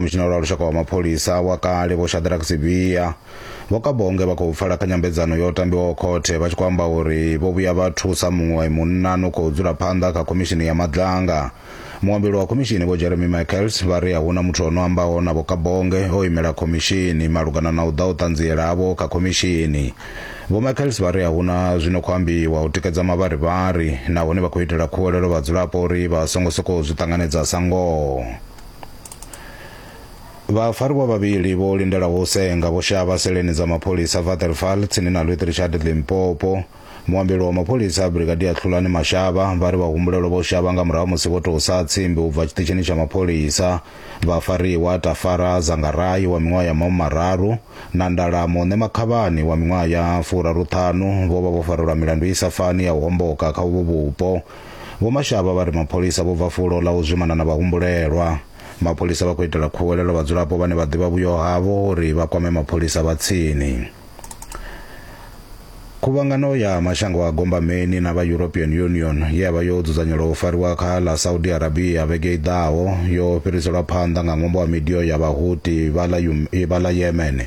mushinauri wa lushaka wa mapholisa wa kale vho shadrack sibia vho kabonge vha khou pfala kha nyambedzano yo tambiwaho khothe vha tshi khou amba uri vho vhuya vha thusa muṅwe munna no khou dzula phanḓa kha khomishini ya madlanga muambeli wa khomishini vho jeremy michaels vha ri a huna muthu o no ambaho na vho kabonge o imela khomishini malugana na u ḓa u ṱanziela havho kha khomishini vho michaels vha ri a huna zwino khou ambiwa u tikedza mavharivhari nahone vha khou itela khuwelelo vhadzulapo uri vha songo sokou zwi ṱanganedza sa ngoho vhafarwa vhavhili vho lindelaho u senga vho shavha seleni dza mapholisa vaterfal tsini na lwit richard limpopo muambeli wa mapholisa brigadier tlhulani mashavha vha ri vhahumbulelwa vho shavha nga murahu musi vho tou sa tsimbi u bva tshiṱitshini tsha mapholisa vhafariwa tafara zangarayi wa miṅwaha ya maumi mararu na ndala muṋe makhavhani wa miṅwaha ya furaruṱhanu vho vha vho farelwa milandu i sa fani ya u homboka kha uvho vhupo Vho Mashaba vha ri mapholisa vho bva fulo ḽa u zwimana na vhahumbulelwa. Mapholisa vha khou itela khuwelelo vhadzulapo vhane vha ḓivha vhuyo havho uri vha kwame mapholisa vha tsini. Khuvhangano ya mashango a gombameni na vha European Union ye ya vha yo dzudzanyelwa u fariwa kha ḽa Saudi Arabia vhege i ḓaho yo fhiriselwa phanḓa nga ṅwambo wa midio ya Vhahuti vha ḽa Yemen.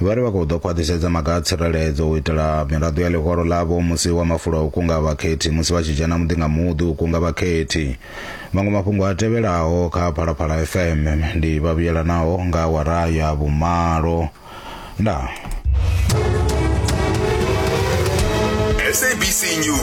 Vha ri vha khou ḓo khwaṱhisedza maga a tsireledzo u itela miraḓo ya ḽihoro ḽavho musi wa mafulo a u kunga vhakhethi musi vha tshi dzhena muḓi nga muḓi u kunga vhakhethi. Maṅwe mafhungo a tevhelaho kha Phalaphala FM ndi vha vhuyelanaho nga awara ya vhumalo. Ndaa. SABC News.